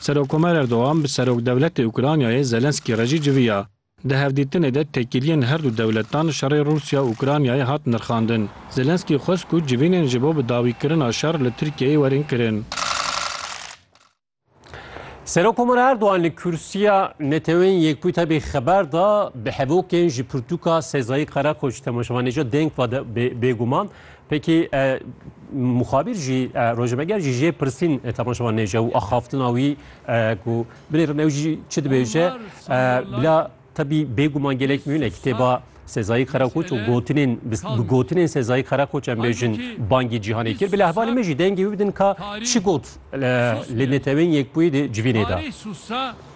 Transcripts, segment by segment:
Serokomer Erdogan bi Serokdewletê Ukraynayê Zelensky re jî civiya. Di hevdîtinê de têkiliyên her du dewletan şerê Rûsya Ukraynayê hat nirxandin. Zelensky xwest ku civînên ji bo bi dawîkirina şer li Tirkiyeyê werin kirin. Serokomer Erdogan li Kûrsiya Neteweyên Yekbûyî tevî xeber da, bi hevokên ji pirtûka Sezayî Qereqoç temaşevanê jî deng va de bêguman. Peki e, muxabîr jî e, rojnameger jî jê pirsîn e, temaşevan nêce û axaftina wî ku binêrin ew jî çi dibêje bila tebî bêguman gelek mîne kitêba Sezayî Karakoç û gotinên bi gotinên Sezayî Karakoç em bêjin bangî cîhanê kir. Bila hevalê me jî dengê wî bidin ka çi got li netewên yekbûyî de civînê da.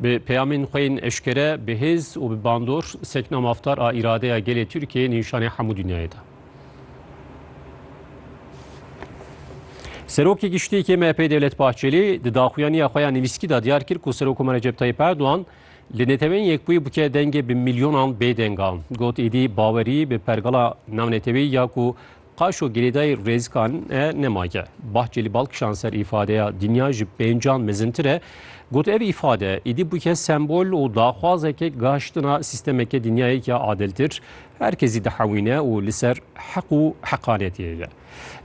Bi peyamên xwe yên eşkere, bi hêz û bi bandor sekna mafdar a îradeya gelê Tirkiyeyê nîşanê hemû dinyayê da. Serokê Giştî yê MHP'ê Devlet Bahçelî di daxuyaniya xwe ya nivîskî de diyar kir ku Serokomar Recep Tayyip Erdogan li Neteweyên Yekbûyî bike dengê bi milyonan bêdengan. Got êdî bawerî bi pergala navneteweyî ya ku Qaşo girêdayî rêzkan e ne mage. Bahçelî bal kişand ser îfadeya dinya ji pêncan mezintir e. Got ev îfade îdî bûke sembol û daxwazeke gaştina sîstemeke dinyayeke adiltir, her kesî dihewîne û li ser heq û heqanetiyê ye.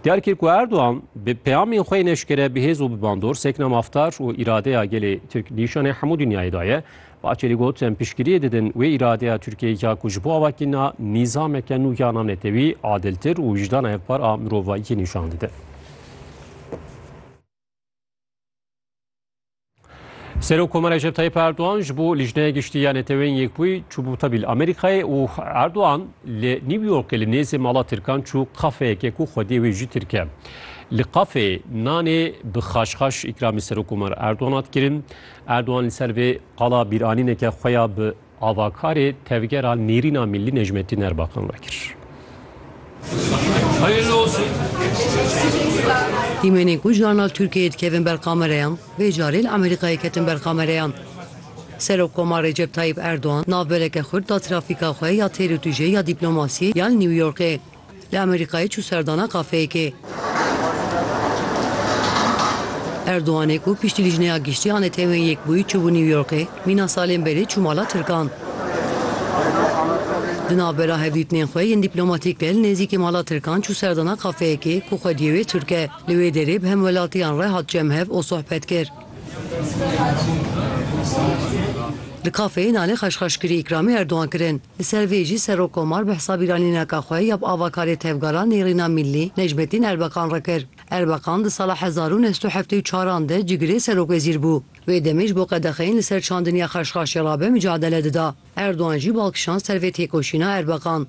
Diyar kir ku Erdogan bi peyamên xwe yên eşkere bi hêz û bi bandor sekna mafdar û îradeya gelê Tirk nîşanê hemû dinyayê daye. Bakerî got, Em piştgiriyê didin wê îradeya Tirkiyeyê ya ku ji bo avakirina nîzameke nû ya navnetewî, adiltir û wijdana hevpar a mirovahiyê nîşan dide. Serokkomer Recep Tayyip Erdogan ji bo Lijneya Giştî ya Neteweyên Yekbûyî çûbû tevîl Amerîkayê û Erdogan li New Yorkê li nêzê mala Tirkan çû kafeyekê ku xwediyê wê jî Tirk e. Li kafeyê nanê bi xaşxaş îkramî Serokkomer Erdogan hat kirin. Erdogan li ser vê qala bîranîneke xwe ya bi avakarê tevgera Nêrîna Mîllî Necmettin Erbakan ve kir. Dîmenên ku jarna li Tirkiyeyê dikevin ber kamereyan, vê carê li Amerîkayê ketin ber kamereyan. Serokkoma Recep Tayyîp Erdogan navbeleke xurt da trafîka xwe ya têr û tûjê ya dîplomasiyê ya li New Yorkê. Li Amerîkayê çû serdana kafeyekê. Erdoganê ku piştî Lîjneya Giştî a Netewên Yekbûyî çûbû New Yorkê, mîna salên berê çû mala Tirkan. Di navbera hevdîtinên xwe yên dîplomatîk de li nêzîkî mala Tirkan çû serdana kafeyekê ku xwediyê wê Tirk e. Li wê derê bi hemwelatiyan re hat cem hev û sohbet kir. Li kafeyê nanê xweşxweşkirî îkramê Erdogan kirin. Li ser vê jî Serok Komar bi hesabî ranîneka xwe ya bi avakarê tevgera Nêrîna Mîllî Necmetîn Erbekan re kir. Erbekan di sala hezar û neh sed û heftê û çar an de cigirê Serok-Wezîr bû. Wê demê ji bo qedexeyên li ser çandin ya xweşxaşê rabe micadele dida. Erdogan jî bal kişand ser vê têkoşîna Erbekan.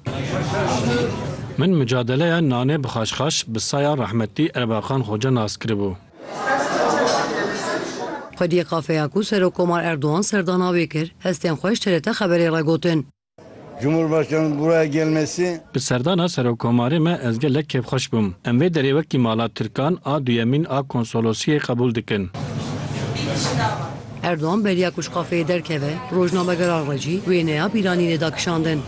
Min micadeleya nanê bi xweşxaş bi saya rehmetî Erbekan Xoca nas kiribû. Xwediyê kafeya ku Serokkomar Erdogan serdana wê kir, hestên xwe ji TRT Xeberê re gotin. Cumhurbaşkanı buraya gelmesi. Bi serdana Serokkomarê me ez gelek kêfxweş bûm. Em vê derê wekî mala Tirkan a duyemîn a Konsolosiyê qebûl dikin. Erdogan beriya ku ji kafeyê derkeve, rojnamegeran re jî wêneya bîranînê da kişandin.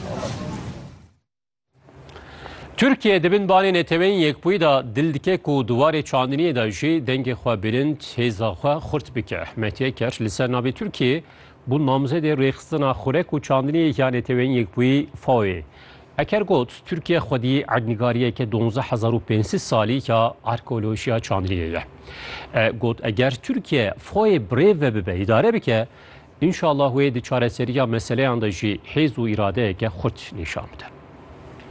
Türkiye di bin banê neteweyên yekbûyî de dil dike ku di warê çandiniyê de jî dengê xwe bilind, hêza xwe xurt bike. Mehdi Eker li ser navê Türkiye bûn namzedê rêxistina xurek û çandiniyê ya neteweyên yekbûyî FAO'yê. Eker got, Türkiye xwedî erdnîgariyeke donzdeh hezar û pênc sed salî ya arkeolojiya çandiniyê ye. E got, eger Türkiye FAO'yê bi rêve bibe, îdare bike, Înşallah wê di çareseriya meseleyan de jî hêz û îradeyeke xurt nîşan bide.